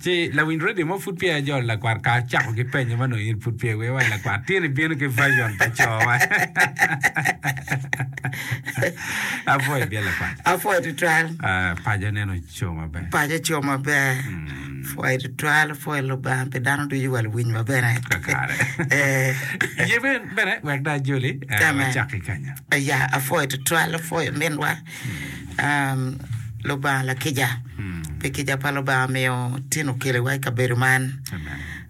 Ci lawiny redio mo pud peya jolo lakwat ka cako ki penyo ma nongo in pud peya iweo wai lakwat. Tin ibino ki version pa cowa. Apwoyo bye lakwat. Apwoyo tutwal. Uh, paco nen oco maber. Paco oco maber. Mm. Pwoyo tutwal, pwoyo Lubanga pi dano ducu wa luwiny wa bene. Kakare. Eh. Ye ben bene wek da joli. Eh, Amen. wacak ki kanya. Ya, apwoyo tutwal, apwoyo minwa. Lubanga lakica, pi kica pa Lubanga miyo tin okeliwa i kabedo man.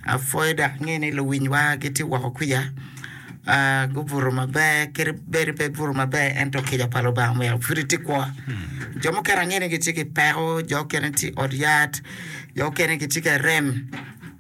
Apwoyo dok angeyo ni luwinywa gitye woko kwica gubuto maber kadi bed pe gubuto maber ento kica pa Lubanga omyero pud iti kwo. Jo mukene angeyo ni gitye ki peko, jo mukene gitye i ot yat, jo mukene gitye ka rem.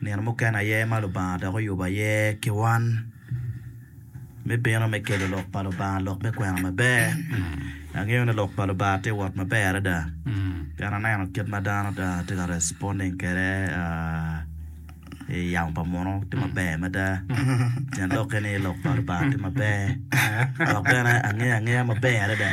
Nino mukene aye ma Lubanga dok oyubo aye ki wan me bino me kelo Lok pa Lubanga, lok me kwena maber. Angeyo ni Lok pa Lubanga tye wot maber adada pien aneno kit ma dano tye ka responding kwede i yamo pa muno tye maber mada. Tyen lok eni ni Lok pa Lubanga tye maber dok bene angeyo angeya maber adada.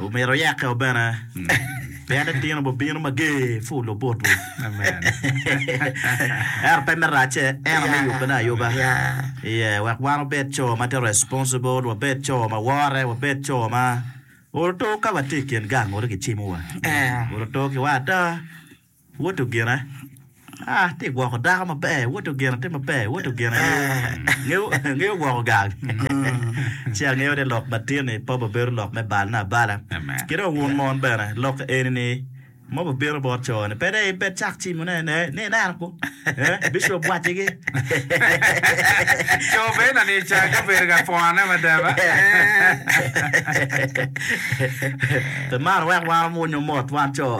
Omyero oyeke o bene pien itino bo bino mager pur lobot wi ento pe me racce en ame yubbe ne ayuba iye wek wan wabed co ma tye responsible wabed co ma wore wabed co ma oto ka watye ikin gang oto gicimo wa oto ki wa ada. Woto gina, ah, tye gwoko dako maber, woto gina, tye maber, woto gina, ngeyo, ngeyo, ngeyo gwoko gang. Ci angeyo ni lok matin-ni pop obedo lok me balna abala. Amen. Ki dong wun mon bene, lok eni-ni ma bibino bot co-ni, pe dai in pe icak cim wunu aye, ne, ni ineno kwo, eh, bicop wacigi. Co bene ni cake obedo ka pwone mada ba? Eh. Pe maro wek wan omwonyo mot wan co.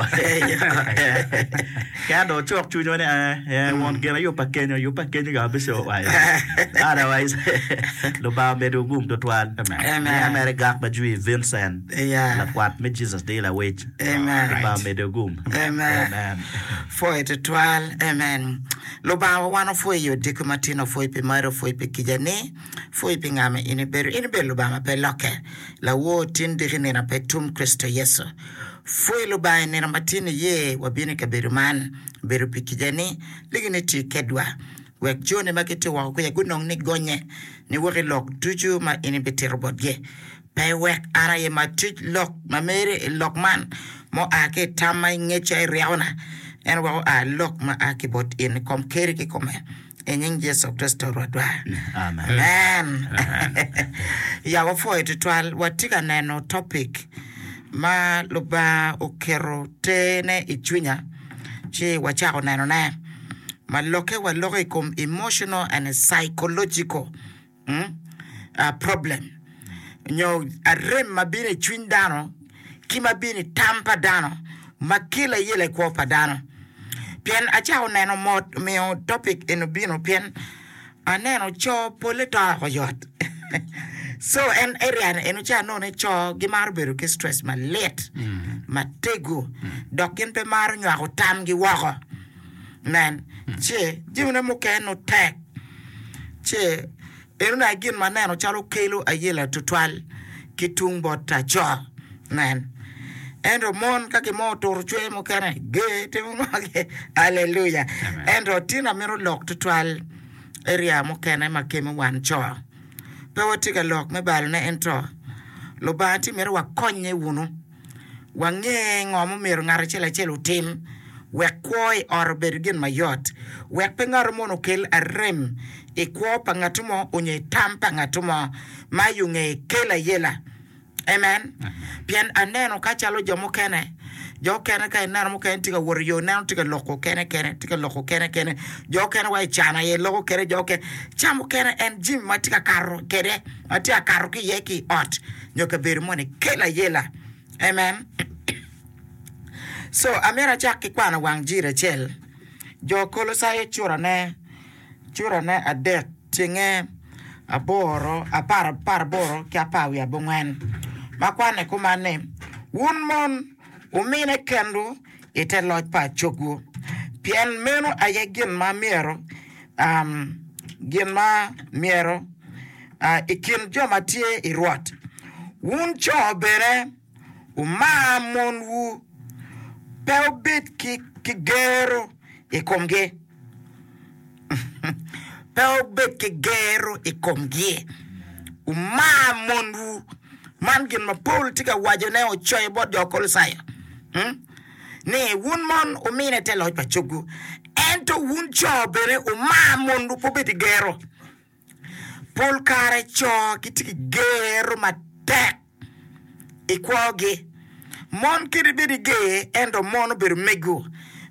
Kaya dong ocok cwinywa ni, ee, won gin aye yubba kenyo, yubba kenyo ka wabico wa iye. Otherwise, Lubanga omedo gum twatwal. Miya mere gak ma jwi Vincent, lakwat me Jesus Deal Awec. Lubanga omede gum. Amen. Pwoyo twatwal. Amen. Lubangawa wan opwoyi i odiko matino, opwoyi pi mari, opwoyi pi kica ni. Pwoyi pi nga ma in ibedo. In ibedo Lubanga ma pe lokke, Lawor, tin, diki, nino, pe tum, Kricito Yecu. Pwoyi Lubanga, i nino ma tin iye wabino i kabedo man, bedo pi kicani, ligi ni ti kedwa, wek joni ma gitye woko kwica gunong ni gonnye, ni wok i lok ducu ma in ibitito botgi. Pe iwek an aye ma atic lok ma mere i lok man, ma oa ki i tam ma ingeca i ryekona, ento wek oa lok ma a ki bot in i kom Keri kikome, i nying Yecu Kricito Rwotwa. Amen. Ya wapwoyo tutwal. Watye ka neno topic ma Lubanga oketo tene i cwinya ci wacako nenone, ma lokke wa loka i kom emotional and psychological. mm, ah, problem, nyo arem ma bino i cwiny dano, ki ma bino i tam pa dano, ma kelo aye lekwo pa dano. Pien acako neno mot, omiyo topic eni obino, pien aneno co polle to oko yot. so en area ni eno ca none co gimaro bedo ki stress malit, matego, dok gin pe maro nywako tamgi woko. Nen, ce jamine mukene nongo tek, ce enoni aye gin ma aneno calo kelo ayela tutwal ki tung bot laco. Nen, ento mon ka gimo oturo cwer mukene, ger timo ngogi. Aleluya! Ento tinna mito lok tutwal area mukene ma kemo wan co. Pe watye ka lok me balone, ento Lubanga tye mito wakonnye wunu. Wange ngo ma omyero ngat acel acel otim wek kwo i ot obed gin mayot, wek pe ngato mono okel arem i kwo pa ngatu mo onyo i tam pa ngatu mo ma i onge kel ayela. Amen. Pien aneno ka calo jo mukene, jo okene ka ineno mukene tye ka wot iyo ineno tye ka loko kene kene, tye ka loko kene kene, jo okene wa i can aye loko kene jo okene, ca mukene en jimi ma tye ka kato kede ma tye ka kato ki iye ki i ot. nyo kabedo moni kelo ayela. Amen. Co, amyero acak ki kwano wang jiri acel. Jo Kolocai curane, curane adek, cenge aboro, apar, apar aboro ki apar wiye abongwen, ma kwanne kuman ni, Wun mon, wumine kenwu, i te loc pa acogwu, pien meno aye gin ma myero, um, gin ma myero, uh, i kin jo ma tye i Rwot. Wun co bene, wumar monwu, pe wubed ki, ki gero i komgi. Pe wubed ki gero i komgi. Wumar monwu. Man gin ma Paulo tye ka wacone ocoyo bot jo Kolocai hmm? ni wun mon wumine te loc pa cogwu, ento wun co bene wumar monwu, pe wubed ki gero. Pol kare co gitye ki gero matek i kwogi. Mon kite bedo i ger ento mon obedo mego.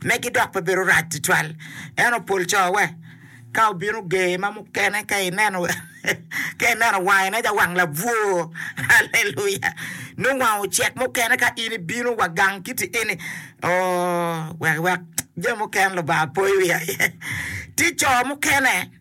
Megi dok pe bedo rac tutwal. Ento pol co we ka obino ger ma mukene ka ineno ka ineno wange nen calo wang labwor. Aleluya! Nongo wange ocek mukene ka in ibino wa gang kiti eni ooh wek wek jami mukene Lubanga poyo wiye aye. Tye co mukene.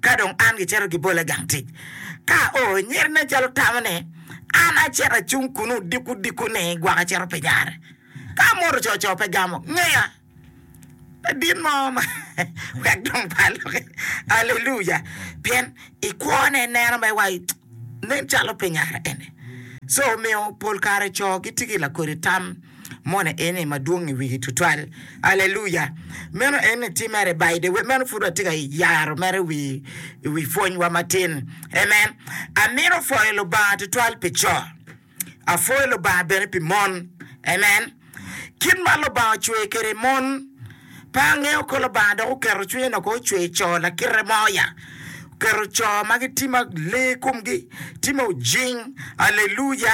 Ka dong an gicito gibola i gang tic, ka o enyer nen calo tamo ni, an acito acung kunnu diko diko ni gwaka cito pi nyare. Ka amoto co co pe gamo ngeya ladit mo ma wek dong pe aloki. Aleluya! Pien i kwone ineno me wa. Nen calo pe nyare ene. Co omiyo pol kare co gitye ki lakodi tam moni eni madwong i wigi tutwal. Aleluya! Meno eni tye mere bide. Wek meno pud watye ka yaro mere i wi pwonywa matin. Amen. Amito pwoyo Lubanga tutwal pi co. Apwoyo Lubanga bene pi mon. Amen. Kit ma Lubanga ocweyo kwede mon, pe angeyo ko Lubanga dok oketo cwinye noko ocweyo co lakite mo ya. Oketo co ma gitye ma lee komgi tye ma ojing. Aleluya!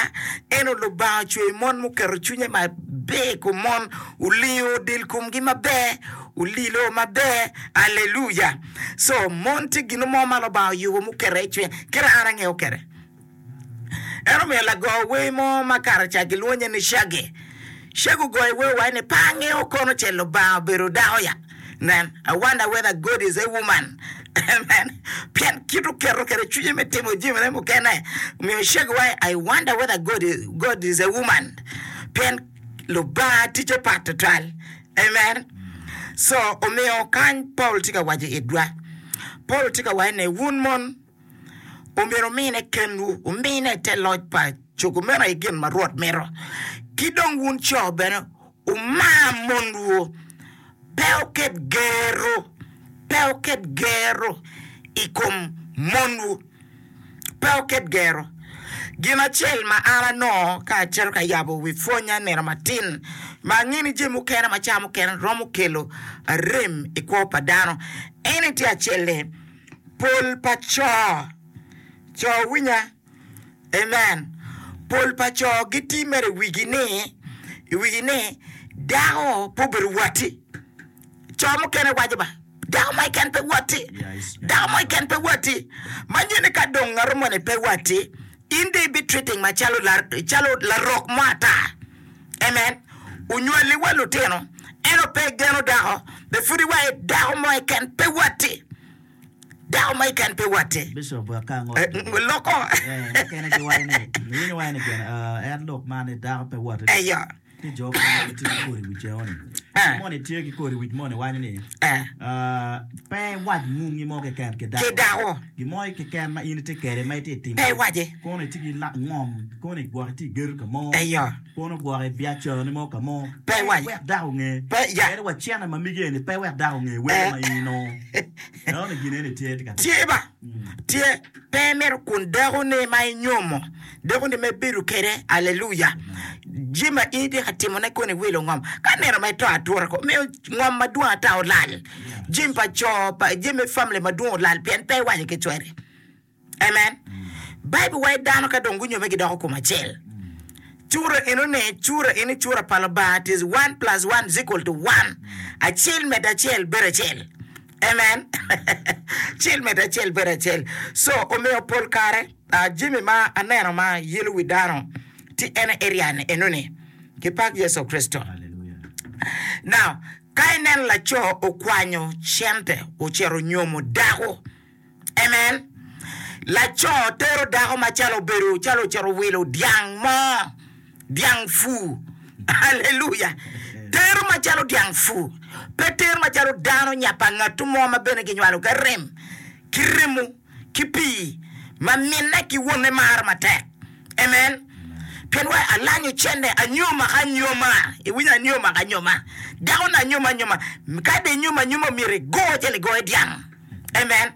Ento Lubanga ocweyo mon ma oketo cwinye maber i kom mon, olingo del komgi maber, olilo maber. Aleluya! Co, mon tye gin mo ma Lubanga oyubo muketo iye cwiny. Kit ma an angeyo kwede. En omiyo lago wer mo ma kato ca gilwonye ni Shaggy, Shaggy ogoyo wer wai ni pe angeyo kono ce Lubanga obedo dako ya, nen, I wonder whether God is a woman, amen, pien kit oketo kwede cwinye me timo jamine mukene omiyo Shaggy waco I wonder whether God is a woman, pien Lubanga ticce pat tutwal, amen, so omiyo kany Paul tye ka waco itwa, Paul tye ka waco ni wun mon. omyero wumine kenwu, wumine te loc pa cogo meno aye gin ma Rwot mito. Ki dong wun co bene, wumar monwu. Pe wuket gerru, pe wuket gerru i kom monwu, pe wuket gerru. Gin acel ma an anongo ka acito ka yabo wi pwonnya nino matin, ma angeyo ni jami mukene macalo mukene romo kelo rem i kwo pa dano, en aye tye acel-le, Pol pa co. Co winya. Amen. Pol pa co giti mere i wigi ni, i wigi ni dako pe obedo watti. Co mukene waco ba, dako mo keken pe watti. Dako mo keken pe watti. Ma nyeni ka dong ngatu moni pe watti, In dong ibi treating ma calo calo larok mo ata. Amen. Onywali wa lutino, eno pe igeno dako, be pud iwa e dako mo eken pe watti. Dako mo eken pe watti. Bishop wek ka ango Eh, mm, loko. eh, mukene giwaco ni, iwinyo waco ni gene, ah, en lok man ni dako pe watti. Eyo. ki jo moni ma gitye ki kodi i wi ceo-ni. Jo moni tye ki kodi i wic moni waco ni, Pe iwac ngungi mo keken ki dako. Gin mo keken ma in itye kwede ma itye ka timo, pe iwace. Kono itye ki ngom, kono gwok itye ka gedo ka mo, kono gwok i biacarani mo ka mo, pe iwac wek dako onge. Pien wacene ma migi eni, pe iwek dako onge wele ma in inongo. Enoni gin eni tye ka timmi. Pe imito kun dekoni ma inyomo, dekoni ma ibedo kwede, aleluya, jami ma in itye ka timone koni iwilo ngom. Ka nino ma ito atura kong miyo ngom madwong ata olal, jami pa co, pa jami me famili madwong olal pien pe iwaco ki cwari. Amen. Baibul waco dano ka dong gunyomme gidoko kom acel. Cura enoni, cura eni cura pa Lubanga, it is one plus one is equal to one, acel medo acel bedo acel. Amen. Cil medde acel bedo acel. So omiyo pol kare ah, jami ma aneno ma yelo wi dano ti en aye ryan enoni. Kipak Yecu Kricito. Now, ka ineno laco okwanyo cente ocito onyomo dako, Amen. Laco tero dako macalo obedo calo ocito wilo dyang mo, dyang fu. Haleluya. Tero macalo dyang fu. Pe tero macalo dano nya pa ngatu mo ma bene kinywalo ka rem, ki remo, ki pii, ma minne ki wonne maro matek. Amen. Pien wa alanyo cente anyoma ka anyoma. Iwinyo anyoma ka anyoma. Dako-ni anyoma anyoma. Kadi anyoma anyoma myero igo cen igoye dyang. Amen.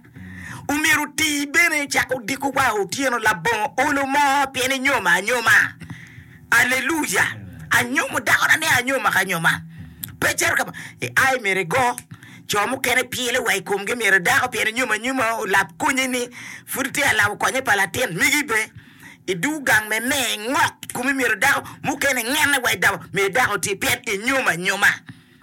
Omyero oti bene icako odiko wa otyeno labongo olo mo pien inyomo anyoma. Aleluya. Anyomo dakona ni anyoma ka anyoma. Pe cito ka i ai myero igo. Co mukene pyele wa i komgi myero dako pien inyomo anyoma olap konye ni pud itye ka labo konye pa latin megi be. I duu gang me me ngok kumi myero dako mukene ngene wa i daba myero dako oti pien inyomo anyoma.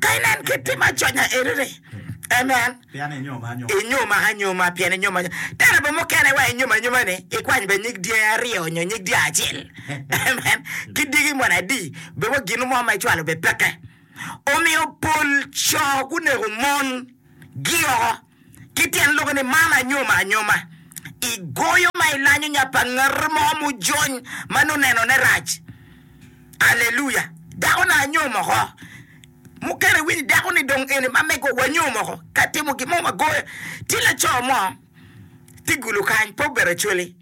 Ka inen kit tim aconya eri-ri, amen, inyuma anyuma, pien inyuma anyuma. Tera bot mukene wa inyuma anyuma-ni, ikwany bene nyig dyangi aryo nyo nyig dyang acel, amen, ki dyegi moni adi, bed wa gin mo ma icwalo bed peke. Omiyo pol co guneko mon-gi oko. Ki tyen lok ni man anyoma anyoma, i goyo ma i lanyo nya pa ngat mo mujony ma nongo neno ne rac. Aleluya! Dako na anyom oko. Mukene i winyi dako ni dong eni ma mego wa nyom oko ka timo gin mo wa goyo. Tye laco mo ti gulu kany pe obedo acholi.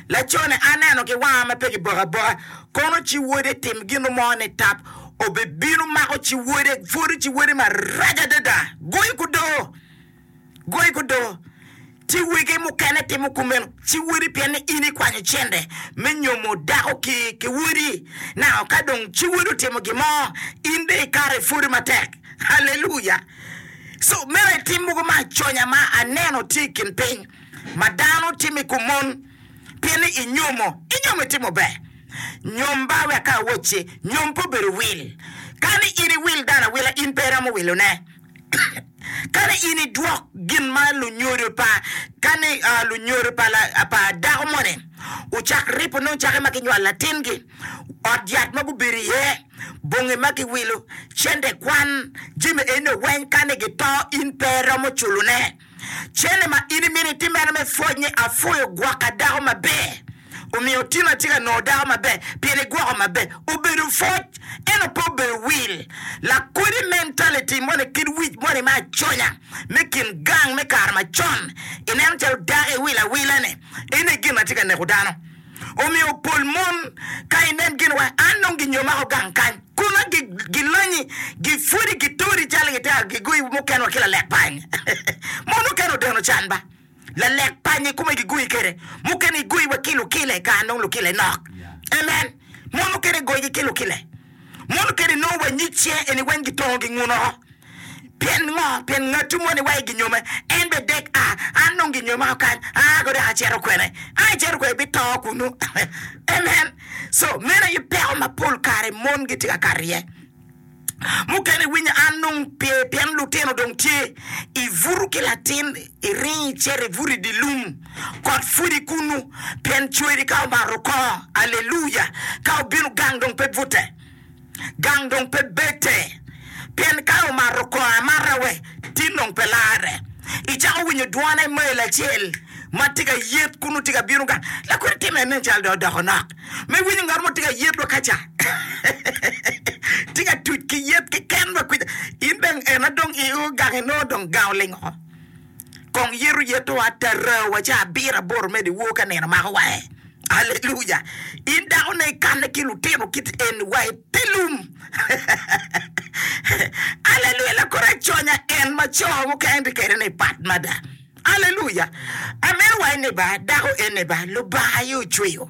Lacone, aneno ki wanga ma pe kiboko aboka, kono ci wode tim gino mo nitap, obibino mako ci wode, pwodo ci wode marac adada, goyo kudo, goyo kudo. Ci wege mukene timo kumeno, ci wode pien ni in ikwanyo cente me nyomo dako ki ki wodi, naka ka dong ci wodi otimo gin mo, in dong ikato ipwodo matek. Haleluya! So, meno aye tim mogo ma aconya ma aneno tye i kin piny. ma dano timo i kom mon, pien ni inyomo, inyomo itimo ber. Nyom ba wek ka awocci, nyom pe obedo wil. Kani in iwil dano awila, in pe iromo wilone. Kani in idwok gin ma lunyodo pa, kani lunyodo pa la, pa dako moni ocak ripo nongo cake ma ginywalo latingi, ot yat ma gubedo iye, bongi ma giwilo, cente kwan, jami enino weny kani gito in pe iromo culone. Cene ma in imito itimere me pwoc ni apwoyo gwokka dako maber omiyo tin atye ka nongo dako maber pien igwoko maber obedo pwoc ento pe obedo wil. Lakodi mentality moni kit wic moni me aconya me kin gang me kare macon ineno calo dako iwilo awila ne ene gin ma tye ka neko dano. omiyo pol mon ka inen gin wa an nongo gi nyo mako gang kany kuna gi gi lanyi gi pwodi gi tori calo gi tero gi goyi mukene wa ki lalek pany mon mukene odeno can ba lalek pany i kume gi goyi kede mukene gi goyi wa ki lukile kare nongo lukile nok amen mon mukene goyi gi ki lukile Munu keni nongo wa nyig cinge eni weng gitongo ginguno. Pien ngo? Pien ngattu mo ni wa i ginyome, en be dek a, an dong ginyoma kany, aa ko dok aceto kwene? An aceto kwene bito kunu. Amen. So, meno aye peko ma pol kare mon gitye ka kato iye. Mukene iwinyo an dong pe, pien lutino dong tye, ibuto ki latin, Iring icit ibut i dye lum, kot pwod i kunnu, pien cweri ka omato oko. Aleluya! Ka obino, gang dong pe bute, gang dong pe bete, pien ka omato oko amata we tin dong pe larre. Icako winyo dwone i mail acel ma tye ka yet kunnu, tye ka bino gang. Lakodi timme nen calo dong odoko nok ma iwinyo ngat mo tye ka yet wa ka ca, tye ka tuc ki yet keken wa kwija. In dong ena dong i o gang inongo dong gang oling oko. Kong yeto yeto atarawa ca abiro aboro medo iwor ka nino mako wa eh. Aleluya. In dako ne ikanne ki lutino kit eni wa ipilum. Aleluya lakor aconya en ma co mukene tye kede ni pat mada. Aleluya. Ameno wa eni ba dako eni ba lubanga aye ocweyo.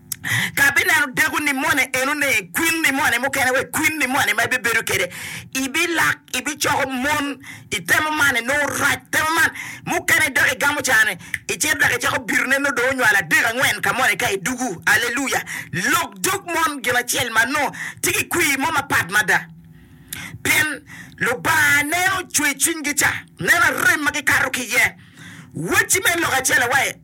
Ka abineno dako ni moni enone, kwin ni moni mukene wek kwin ni moni ma ibibedo kede, ibilak ibicoko mon itemo mane nongo rac temo man mukene dok igamo cane icito dok icako bitone nongo dong onywalo adek angwen ka moni ka idugu aleluya lok dog mon gin acel ma nongo tye ki kwir mo mapat mada pien Lubanga neno cwer cwinygi ca neno rem ma gikato ki iye wacci me lok acel awaye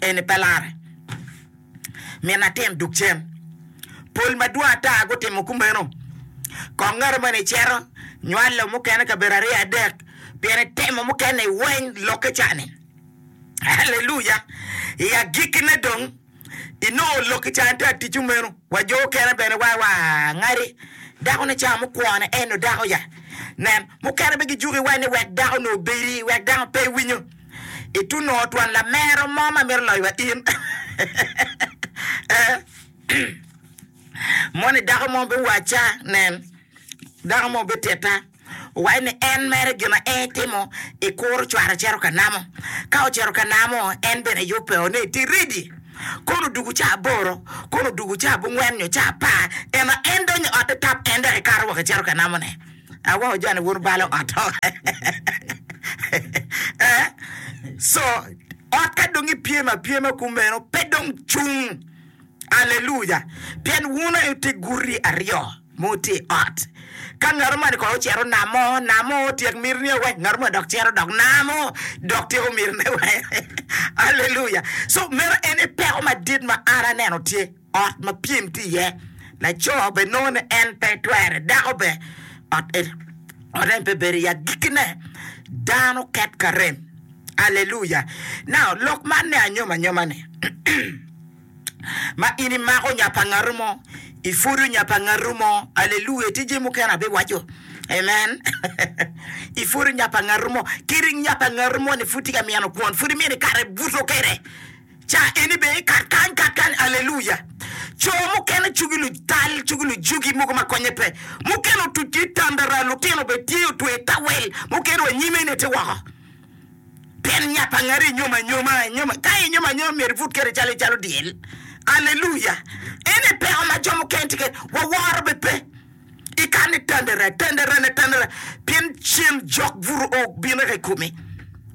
eni pe lare. Min atin duk cen. Pol madwong ata gutimo kumeno. Kong ngati moni icito, nywalo mukene kabedo aryo adek, pien itemo mukene i weny lokke ca-ni. Haleluya! I agikkine dong, inongo lokki ca-ni tye ka tic kumeno. Wa jo mukene bene wa wa ngati, Dakone ca mukwone en-nu dako ya? Nen, mukene bene gijuko iweny ni wek dako-nu obedi, wek dako pe winyo. Itu nongo twon lamero mo ma mito loyo wa in. Moni dako mo biwaca, nen, dako mo bititta, owaco ni en mere gin ma en timo i kuro cware cito ka namo. Ka ocito ka namo, en bene yubbe o ni iti ridi. Kono odugu ca aboro, kono odugu ca abungwen nyo ca apar, ema en donyo i otte tap en dok ekato woko ecito ka namone. Aweko joni bur balo ot ho eh so ot ka dong i pyem a pyema kumeno pe dong cung aleluya pien wun aye wutye guti aryo ma wutye i ot ka ngat omani kono ocito namo namo otyek miti ni owek ngat omani dok cito dok namo dok tyeko miti ne wek aleluya so meno ene peko madit ma an aneno tye ot ma pyem tye iye, laco bene nongo ni en pe twere, dako bene ot en pe bedo iye. Agikkine, dano ket ka rem. Aleluya! Nau, lok man me anyomanyoma-ni, ma in imako nya pa ngatu mo, ipwodo nya pa ngatu mo. Aleluya! Tye jami mukene abiwaco. Amen! Ipwodo nya pa ngatu mo. Kadi nya pa ngatu moni pud tye ka mino kwon, pud imito ikato ibuto kwede. Ca eni bene kat kany kat kany aleluya. Co mukene cugi lutal, cugi lujugi, mogo ma konye pe. Mukene otuc ki itandara, lutino bene tye otweyo itawel, mukene wa nyime ne tye woko. Pien nya pa ngari inyomo anyoma, inyomo, ka inyomo anyoma myero ibut kede calo icalo dyel. Aleluya. Ene peko ma jo mukene tye kede, waworo bene pe. Ika ni tendere, tenderene, tenderene, pien cen jok buru o bino ka i komi,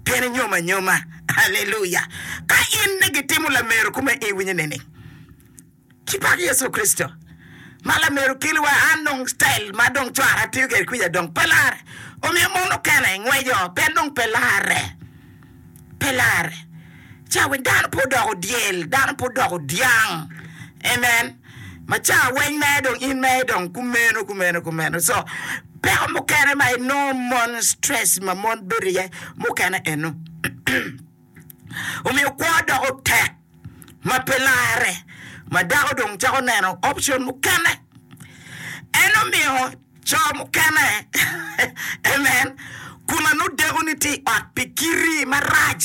pien inyomo anyoma. Haleluya! Ka in ni gitimo lamero kome i winyi nining? Ci pak Yecu Kricito ma lamero keli wa an dong style ma dong cwara atiyo kwede kwica dong pe larre, omiyo mon okene ngweco pien dong pe larre. pe larre. Cawa dano pe odoko dyel, dano pe odoko dyang. Amen. Ma cawa weng mere dong in mere dong kumeno kumeno kumeno. So peko mukene ma inongo mon stress ma mon bedo iye mukene eno. Omiyo kwo doko tek ma pe larre ma dako dong cako neno option mukene. En omiyo Co mukene, amen, kun anodeko ni tye i ot pi kiti marac,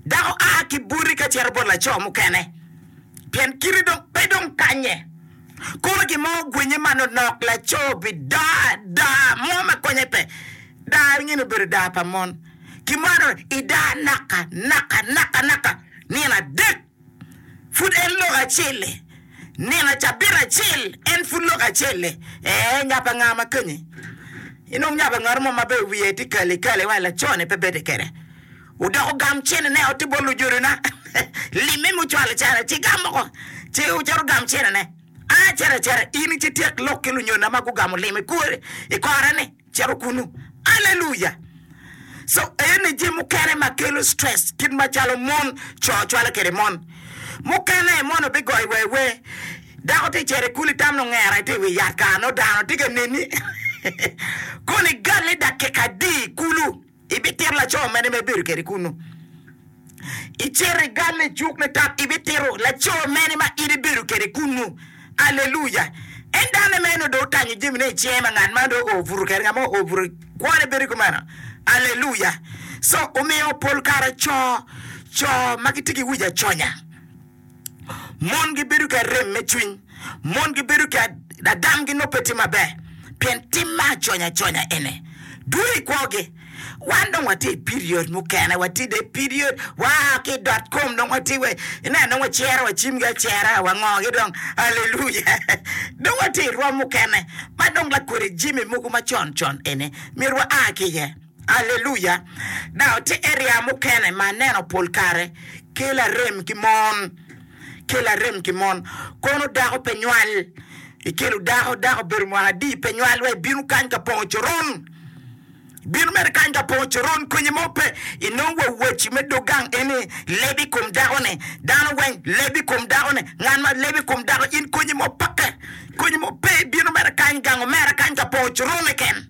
dako a ki boti ka cito bot laco mukene, pien kiti dong pe dong kanye. Kono gin mo ogwinye manonok, laco obi daa daa mo ma konye pe. Daa nyen obedo daa pa mon. Kimaro idaa naka naka naka naka nino adek. Pud en lok acel-le. Nino cabit acel, en pud lok acel-le. Ee, nya pa nga ma keni? Inong nya pa ngat mo ma be wiye tye kali kali wa lacone pe bedi kede. Odok ogam cene ne otti bot lujodona. Limme mi ocwalo cene ci gam moko ci ocito ogam cene ne. A cito acita in ci ityek lok ki lunyodona ma gugamo limi kwo i kore ni. Cito kunu. Aleluya! Co eni jami mukene ma kelo stress kit macalo mon, co cwalo kwede mon. Mukene mono bigoyo wa iwe. Dako tye ka cito i kulu itam nongo ngera tye i wi yat kara nongo dano tye ka neni. Kono igalle dakika adi i kulu? Ibitito laco mene ma ibedo kwede kunnu? Icito igal licuk nitat, ibitito laco mene ma in ibedo kwede kunnu? Aleluya! En dano meno dong otanyo jamine i cinge ma ngat man dong oo buto kwede, ngat ma oo buto kwone bedo kumeno. Aleluya! Co, omiyo pol kare co, co ma gitye ki wic aconya. Mon gibedo ki arem me cwiny. Mon gibedo ki adamgi nongo pe tye maber pien tim me aconyaconya eni dwong i kwogi. Wan dong watye i period mukene, watye dong i period, waa ki i dot kom dong watye wa, ineno dong wacero wa cimgi acera, wangogi dong. Aleluya! Dong watye i rwom mukene ma dong lakodi jami mogo ma con con eni myero waa ki iye. Aleluya! Dago tye area mukene ma aneno pol kare kela rem ki mon, kela rem ki mon. Kono dako pe nywal, ikelo dako, dako obedo mwaka adi pe nywal wa ibino kany ka pongo coron, ibino mere kany ka pongo coron konyi mo pe. Inongo wa waci me dog gang eni leb i kom dako ni, dano weng leb i kom dako ni, ngat ma leb i kom dako in konyi mo peke, konyi mo pe ibino mere kany gang omera kany ka pongo coron keken.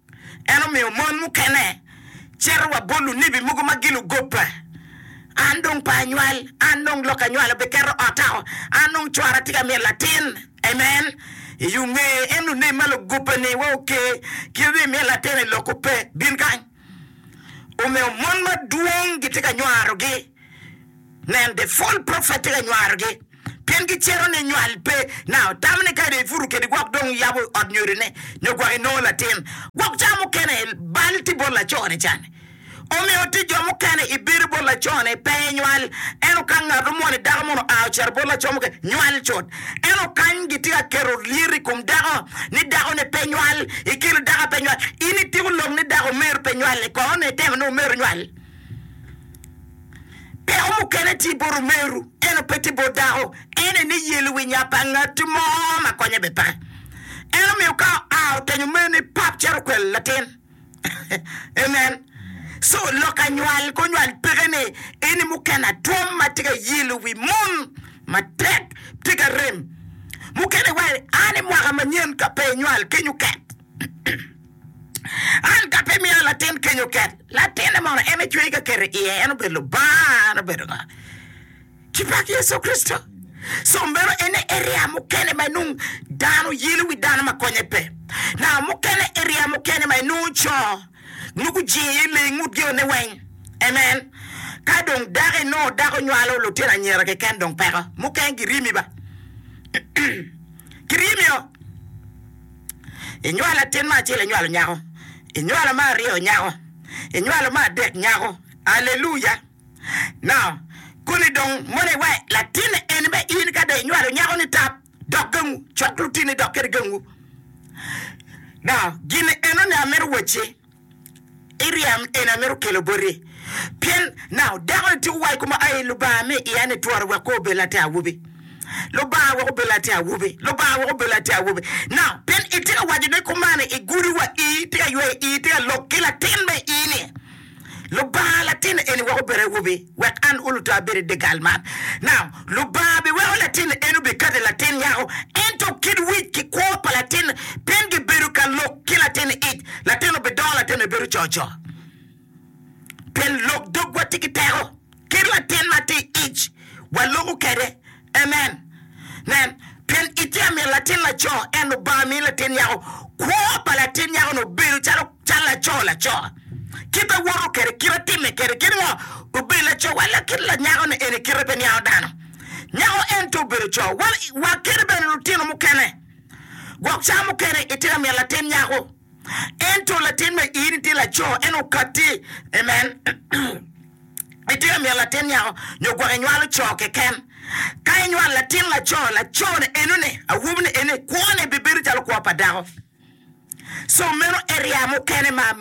En omiyo mon mukene cito wa bot lunebi mogo ma gilugobba. An dong pe anywal, an dong lok anywalo biketo ota o, an dong cwara tye ka myel latin. Amen! I yo nge en lunebi ma lugobba-ni wa oke, kite dong imyel latin-ni lokko pe. Bin kany. Omiyo mon madwong gitye ka nywarogi. Nen, the false prophet tye ka nywarogi. Pien gicito ni nywal pe, nao tamone kadi i puto kede gwok dong yabo ot nyodone, nyo gwok inongo latin. Gwok cawa mukene bal tye bot lacone can. Omiyo tic jo mukene i bedo bot lacone pe i nywal. Ento ka ngat omwone dako mono oa ocito bot laco mukene, nywal cut. Ento kany gitye ka keto lyet i kom dako ni dakone pe nywal, ikelo dako a pe nywal. In itiko lok ni dako omer pe nywal-le, kono ni itemo ni omer onywal? Peko mukene tye bot omeru, ento pe tye bot dako. En aye ni yelo wi nya pa ngat mo ma konye bed peke. En omiyo ka oa otenyo omerene pap cito okwelo latin. Amen. So, lok anywal ki onywal peke ni eni mukene atwom ma tye ka yelo wi mon matek, tye ka rem. Mukene wa, a ni mwaka manyen ka pe inywal, kiny oket. An ka pe imiya latin keny oket, latinne mono en ecweyi ka keto i iye, en obed Lubanga, en obed ngo? Ci pak Yecu Kricito. Co meno en aye eria mukene ma inongo dano yelo i wi dano ma konye pe. Naka mukene eria mukene ma inongo co nongo gujingo iye lee i ngut jone weng. Amen. Ka dong dako inongo dako nywalo lutino anyira keken dong peko. Mukene giryemi ba. Giryemi o. I nywalo latin ma acel inywalo nyako, I nywalo ma aryo nyako, I nywalo ma adek nyako. Aleluya! Now, koni dong mono iwa latin eni be in ka dong inywalo nyako ni tap dok gangu, cok lutini dok kede gangu. Now, gin enoni amito wacci. Iryem eni amito kelo boti, pien nau dako-ni tika owaco kuma, Ai, Lubanga, mi iya ni twora wek kor obed latin awobi. Lubanga wek obed latin awobi. Lubanga wek obed latin awobi. Nau, pien itye ka waco ni kumani i gudo wa ii, itye ka yweyo ii, itye ka lok ki latin me ii-ni. Lubanga, latin-ni eni wek obed awobi. Wek an uluta abed i dye gal man. Now, Lubanga biweko latin ni en obikati latin nyako, ento kit wic ki kwo pa latin piny gibedo ka lok ki latin ic. Latin obidongo, latin bibedo cocoo, pien lok dogwa tye ki teko. Kit latin ma tye i ic, waloko kwede. Amen. Nen, pien itye miyo latin laco, ento Lubanga miyo latin nyako. Kwo pa latin nyako-ni obedo calo cal laco laco. Kit awoto kwede, kit atime kwede, kit ngo, obedo laco. Wa lok kit lanyako-ni eni kite pe niango dano. Nyako ento obedo co. Wa, wa kit bene lutino mukene. Gwok ca mukene itye ka miyo latin nyako. Ento latin ma in itye laco en okatti. Amen. Itye ka myero latin nyako nyo gwok inywalo co keken. Ka inywalo latin laco, laco-ni enoni, awobini eni, kwone bibedo calo kwo pa dako. So meno area mukene ma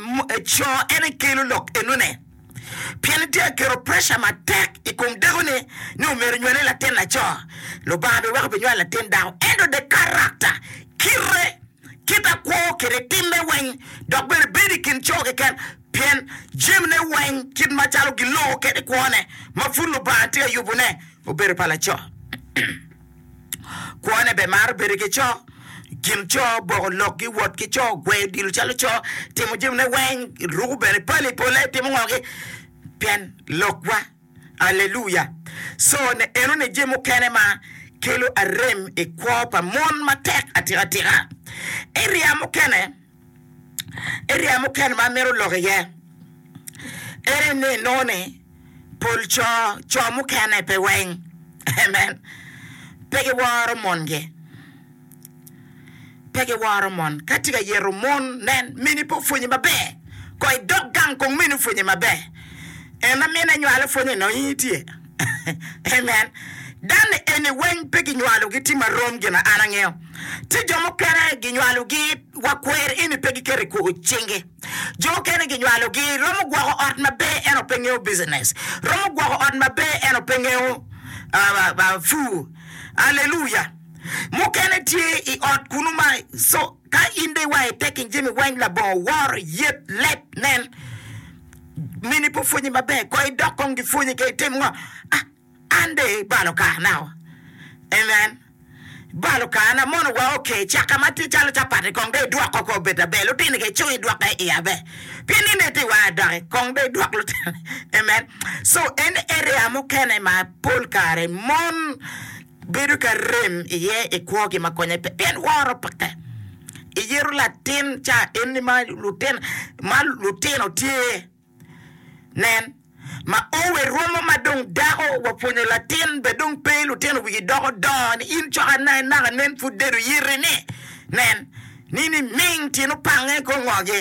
co en ekelo lok enone. Pien itye ka keto pressure matek i kom dakoni ni omyero onywali latin laco. Lubanga biweko binywalo latin dako. Ento the character, kite, kit a kwo kede timme weng, dok bene bedo i kin co keken, pien jamine weng kit macalo giloko kede kwone ma pud Lubanga tye ka yubone obedo pa laco. Kwone bene maro bedo ki co, gin co, boko lokgi, wot ki co, gweyo odilo calo co, timo jamine weng, ruko bene pali pole, timo ngogi pien lokwa. Alleluia! Co ne eno ne je mukene ma kelo arem i kwo pa mon matek atika tika. Area mukene, area mukene ma amito lok iye ene ni inongo ni pol co, co mukene pe weng, amen, pe giworo mongi. Pe giworo mon ka tye ka yeto mon. Nen, mini pe opwonye maber. Kono idok gang kong mini opwonye maber. En ma mine nywalo pwonye nongo in itye. Amen. Dano eni weng pe ginywalogi tye marom gin ma an angeyo. Tye jo mukene ginywalogi wa kwer eni pe giketo i cingi. Jo okene ginywalogi romo gwoko ot maber ento pe ngeyo business. Romo gwoko ot maber ento pe ngeyo pur. Aleluya! Mukene tye i ot kunnu ma so ka in dong iwayo ite kin jami weng, labongo, woro, yet, leb, nen, mini pe opwonyi maber, kong idok kong gipwonyi ka itim ngo? A, an dong ibalo karanao. Amen. Ibalo karana, mono wa ok ee caka ma tye calo capati kong dong idwoko kong obed aber, lutini kong icung idwoke i aber, pien in dong ite iwayo adoki, kong dong idwok lutini. Amen. So, en area mukene ma pol kare mon. Bedo ka rem iye i kwogi ma konye pe pien woro peke i yeto latin ca enni ma lutino tye. Nen, ma owe romo ma dong dako wa pwonyo latin be dong pe lutino wigi doko dongo ni in cok ana inaka nen pud dedo yiti ni nen ni niming tyen opange i kor ngogi.